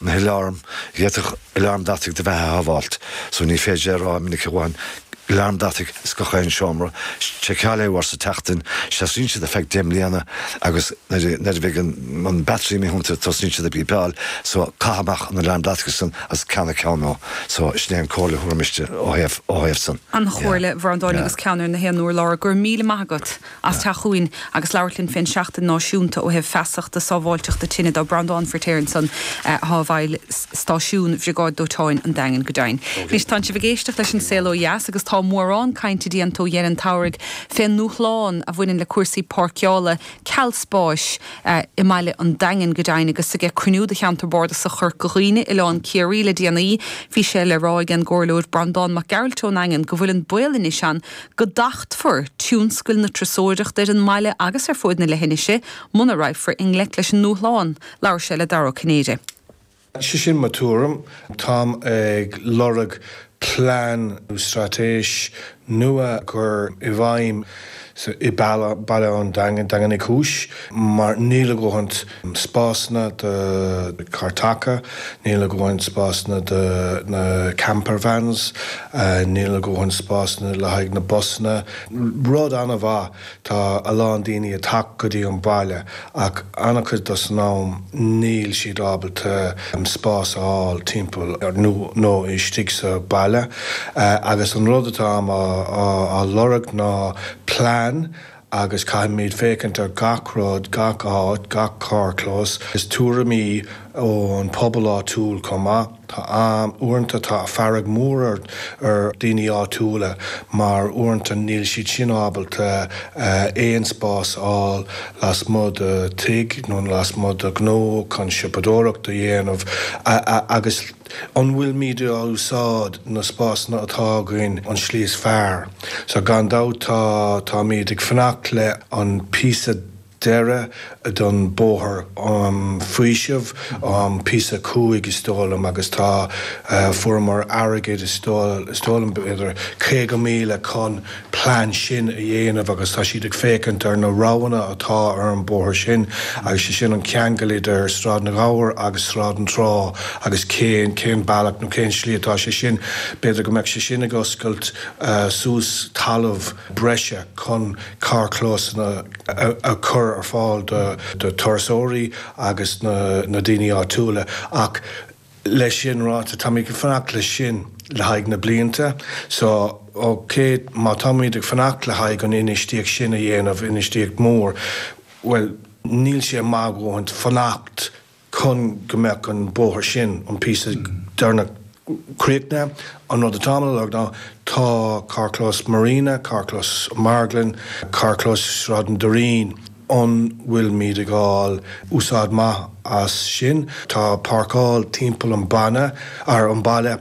na haláraim, d'fhéadfadh aláram deataigh do bheatha a shábháilt, so ní féidir a rá minic a dhóthain, aláram deataigh is gach aon seomra, seiceáil é uair sa tseachtain, seasaíonn siad ar feadh deich mbliana agus nuair a bheidh an battery imithe iontu tosnaíonn siad ag bípeáil, so caith amach an aláram deataigh san agus ceannaigh ceann nua, so sin é an comhairle a thabharfainnse ó thaobh san. An-chomhairle, a Bhreandáin, agus ceann ar gach aon urlár, go raibh míle maith agat. as teacht chugainn agus labhairt linn fén seachtain náisiúnta ó thaobh feasachta sábháilteachta tine de. Breandán Firtéar ansan atá i mbun stáisiún bhriogáid dóiteáin an Daingin go deimhin. Anois tánn sibh ag éisteacht leis an Saol Ó Dheas agus tá mórán cainte déanta ó dheireadh an tsamhraidh fén ndúshlán a bhaineann le cúrsaí páirceála, ceal spáis, i mbaile an Daingin go deimhin agus ag cruinniú do cheantar bárdasach Chorca Dhuibhne, Oileán Chiarraí le déanaí bhí sé le rá ag an gComhairleoir Breandán Mac Gearailt ón Daingean go bhfuil an baol anois ann go dtachtfar tionscal na turasóireachta ar an mbaile agus ar fuaid na leithinise muna raghfar i ngleic leis an ndúshlán. Labhair sé le Dara Ó Cinnéide. Sea sin mo tuairim. Táim ag lorg plean nó straitéis nua a chur i bhfeidhm i mBaile an Daingin, Daingean Uí Chúis, mar níl a dhóthaint spásanna do carr acu, níl a dhóthain spásanna do na camper vans, níl a dhóthain spásanna le haghaidh na busanna. Rud an-mhaith, tá a lán daoine ag teacht go dtí an baile ach an-chuid den am níl siad ábalta spás a fháil timpeall nó istigh sa bhaile agus an rud atáim á lorg ná plean, agus caithfimid féachaint ar gach rud, gach áit, gach carrchlós, is tuairimí ón bpobal áitiúil chomh maith. Tá, am, uaireanta tá fearg mhór ar dhaoine áitiúla mar uaireanta níl siad sin ábalta aon spás a fháil lasmuigh de thigh nó lasmuigh de ghnó chun siopadóireacht a dhéanamh agus An bhfuilimid ag úsáid na spásanna atá againn, an tslí is fearr? Sea, gan dabht. Táimid ag fanacht le an píosa deireadh den bóthar um faoisimh, an píosa a cúig, is dóigh liom, agus tá, fuaireamar airgead, is dóigh liom, b'fhéidir caoga míle chun, plean sin a dhéanamh agus tá siad ag féachaint ar na roghanna atá ar an bóthar sin agus sé sin an ceangal idir Sráid na Gabhar agus Sráid an Trá agus cén, cén bealach nó cén slí atá sé sin, b'fhéidir go mbeadh sé sin ag oscailt suas talamh breise chun carrchlósanna a chur ar fáil do turasóirí agus na daoine áitiúla ach. Leis sin ráite, táimid a fanacht leis sin le haghaidh na blianta so, océ. Má táimid ag fanacht le haghaidh an infheistíocht sin a dhéanamh, infheistíocht mór, bhuel, níl sé maith dhúinn fanacht chun go mbeadh an bóthar sin, an píosa deireanach, críochnaithe. An rud atáim a lorg ná, tá carrchlós Marina, carrchlós Marglann, carrchlós Sráid an Doirín, An bhfuilimid ag fháil úsáid maith as sin? Tá páirceáil timpeall an bhaile, ar an baile,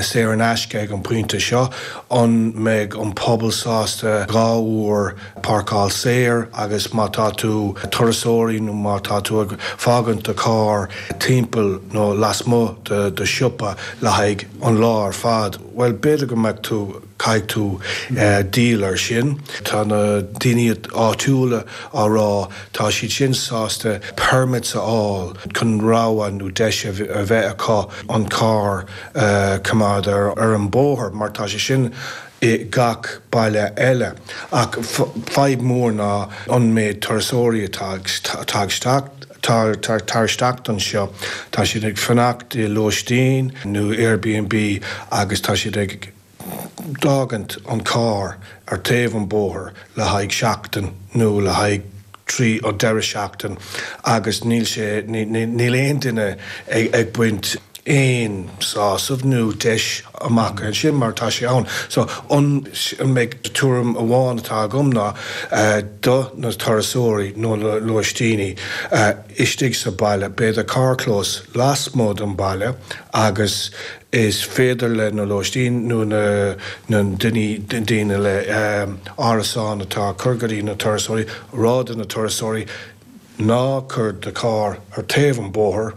saor in aisce ag an pointe seo. An mbeidh an pobal sásta dhá uair páirceáil saor agus má tá tú turasóirí nó má tá tú ag fágaint do charr timpeall nó lasmuigh do siopa le haghaidh an lá ar fad, bhuel, b'fhéidir go mbeadh tú. Caithfidh tú díol ar sin. Tá na daoine áitiúla á rá, tá siad sin sásta permits a fháil chun rogha nó deis a bheith acu an carr a choimeád ar an bóthar, mar tá sé sin i gach baile eile. Ach fadhb mhór ná an méid turasóirí atá ag teacht isteach anseo, tá siad ag fanacht i lóistín nó Airbnb agus tá siad ag. fágaint an carr ar taobh an bóthar le haghaidh seachtain nó le haghaidh trí deireadh seachtain agus níl sé, níl aon duine ag baint aon sásamh nó deis amach as sin mar tá sé ann. So, an mbeidh, tuairim amháin atá agam ná do na turasóirí nó na lóistíní istigh sa bhaile, b'fhéidir carrchlós lasmuigh den bhaile agus, is féidir leis na lóistín nó na na daoine daoine le árasán atá cur go dtí na turasóirí rá do na turasóirí Ná cuir do carr ar taobh an bóthar,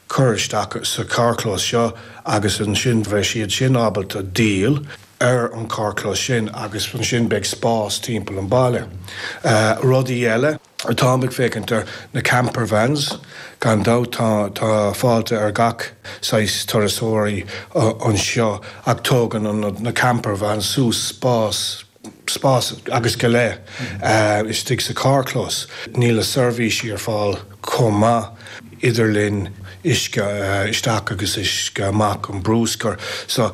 cuir isteach sa carrchlós seo agus ansin bheidh siad sin ábalta díol ar an carrchlós sin agus ansin beidh spás timpeall an baile. Rudaí eile. atáim ag féachaint ar na camper vans. Gan dabht tá fáilte ar gach saghas turasóirí anseo ach tógann na camper vans suas spás, spás agus go leith, istigh sa charrchlós. Níl na seirbhísí ar fáil chomh maith, idirlíon, uisce isteach agus uisce amach an brúscar. So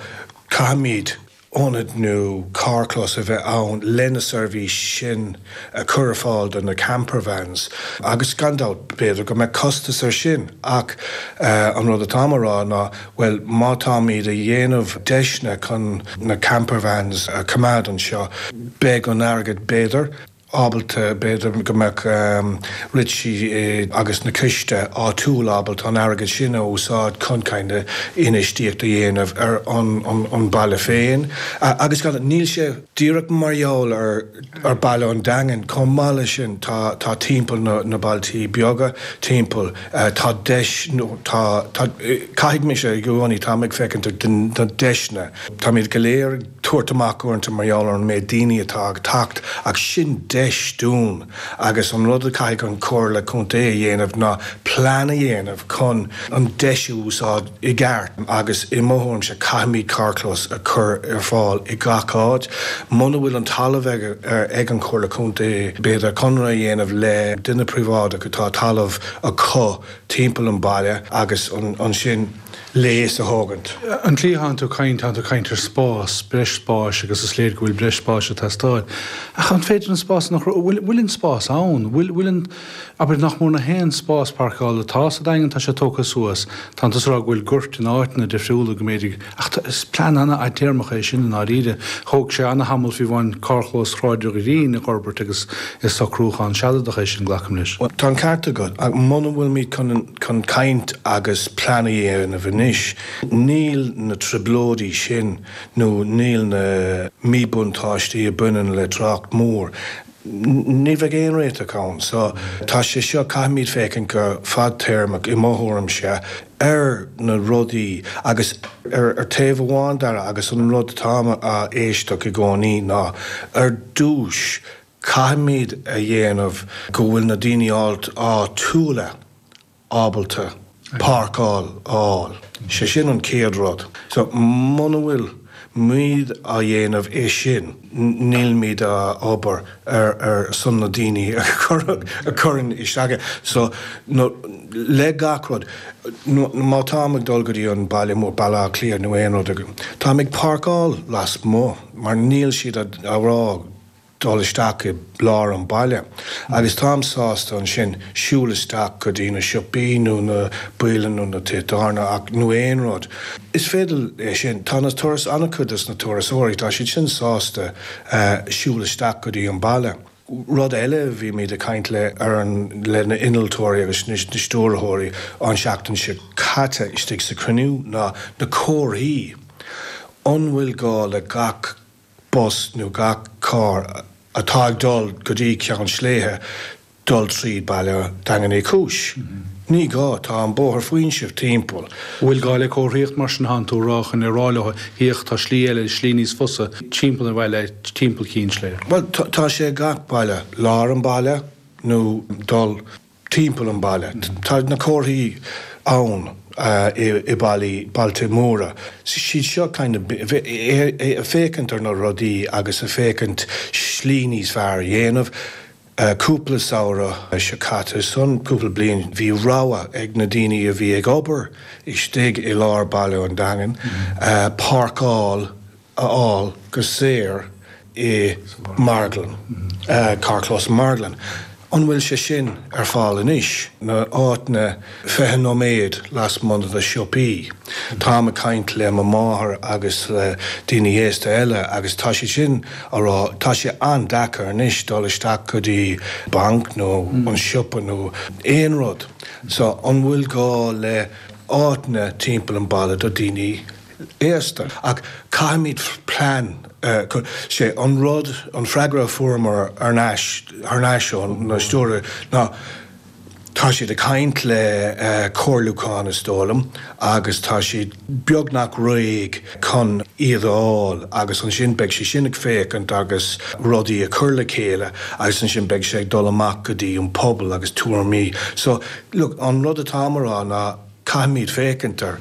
caithfimid. ionad nó carrchlós a bheith ann leis na seirbhísí sin a chur ar fáil do na campervans agus gan dabht, b'fhéidir go mbeadh costas air sin ach an rud atáim a rá ná, bhuel, má táimid a dhéanamh deiseanna chun na campervans a choimeád anseo, beidh an airgead, b'fhéidir. ábalta, b'fhéidir, go mbeadh Ritchie agus na coiste áitiúla ábalta an airgead sin a úsáid chun infheistíocht a dhéanamh ar an bhaile féin. Agus níl sé díreach mar gheall ar Bhaile an Daingin, chomh maith leis sin tá timpeall na bailtí beaga timpeall, tá deis, nó tá, caithfidh mise i gcónaí, táim ag féachaint ar na deiseanna, táimid go léir ag. tabhairt amach uaireanta mar gheall ar an méid daoine atá ag teacht ach sin deis dúinn agus an rud a chaithfidh an Chomhairle Contae a dhéanamh ná plean a dhéanamh chun an deis a úsáid i gceart agus i mo thuairimse caithfimid carrchlós a chur ar fáil i gach áit. Muna bhfuil an talamh ag an Chomhairle Contae b'fhéidir conradh a dhéanamh le duine príobháideach atá talamh acu timpeall an bhaile agus ansin, léas a thógaint. An cliathánn tú caint, tánn tú caint ar spás, breis spáis, agus is léir go bhfuil breis spáis ag teastáil. Ach an féidir an spás sin a chruthu? Bhuel, bhfuil an spás ann? Bhfuil, bhfuil an. Abair nach mór ach aon spás pairceála atá sa Daingean, tá sé tógtha suas. Tánn tú ag rá go bhfuil goirt in áiteanna difriúla, go mb'fhéidir, ach tá, is plean an-fhadtéarmach é sin i ndáiríre. Thóg sé an-thamall fiú amháin carrchlós Shráid an Doirín a dh'fhorbairt agus is socrúchán sealadach é sin, glacaim leis. Bhuel, tá an ceart agat, ach muna bhfuilimid chun an. chun caint agus plean a dhéanamh anois, níl na trioblóidí sin nó níl na míbhuntáistí a bhaineann le trácht mór, ní bheidh aon réiteach ann. So, tá sé seo, caithfimid féachaint go fadtéarmach, i mo thuairimse, ar na rudaí agus ar taobh amháin dá raibh, agus an rud atáim ag éisteacht i gcónaí ná ar dtús, Caithfimid a dhéanamh go bhfuil na daoine áitiúla ábalta páirceáil a fháil. Sé sin an chéad rud. So muna bhfuil muid á dhéanamh é sin, nílimid ag obair ar son na daoine a chuireann isteach é. So le gach rud, má táim ag dul go dtí an baile mór, Baile Átha Cliath nó aon rud, táim ag páirceáil lasmuigh mar níl siad á rá, dul isteach i lár an bhaile, agus táim sásta ansin siúl isteach go dtí na siopaí nó na bialann nó na tithe tábhairne ach, nó aon rud. Is féidir é sin. Tá na turas, an-chuid de na turasóirí, tá siad sin sásta siúl isteach go dtí an baile. Rud eile, bhí mé ag caint le, ar an, le na innealtóirí agus na stiúrthóirí an tseachtain seo caite istigh sa chruinniú ná na comharthaí, an bhfuil gá le gach bus nó gach carr atá ag dul go dtí Ceann Sléibhe dul trí baile Daingean Uí Chúis. Ní gá, tá an bóthar faoisimh timpeall. An bhfuil gá le comharthaíocht mar sin? Tánn tú chun a rá leo, féach, tá slí eile, slí níos fusa, timpeall an bhaile, timpeall Chinn Sléibhe. Bhuel, tá sé ag gach baile, lár an baile nó dul. timpeall an bhaile. Tá na comharthaí ann i bailí, bailte móra. siad seo kind of ag féachaint ar na rudaí agus ag féachaint slí níos fearr a dhéanamh. Cúpla samhradh so caite, ansan cúpla bliain, bhí rogha ag na daoine a bhí ag obair istigh i lár baile an Daingin páirceáil a fháil go saor i marglann, carrchlós an mharglann. An bhfuil sé sin ar fáil anois? na áiteanna fiche nóiméad lasmuigh de siopaí. Táim ag caint le mo mháthair agus le daoine aosta eile agus tá siad sin á rá, tá sé an-deacair anois dul isteach go dtí banc nó an siopa nó aon rud. So an bhfuil gá le áiteanna timpeall an baile do daoine? aosta, ach caithfimid plean a chur. Sé an rud, an freagra a fuaireamar thar n-ais ó na stiúrthóirí ná tá siad ag caint le comhairliúchán, is dóigh liom, agus tá siad beagnach réidh chun iad a fháil agus ansin beidh sé sin ag féachaint agus rudaí a chur le chéile agus ansin beidh sé ag dul amach go dtí an pobal agus tuairimí. So, look, an rud atáim a rá ná caithfimid féachaint air.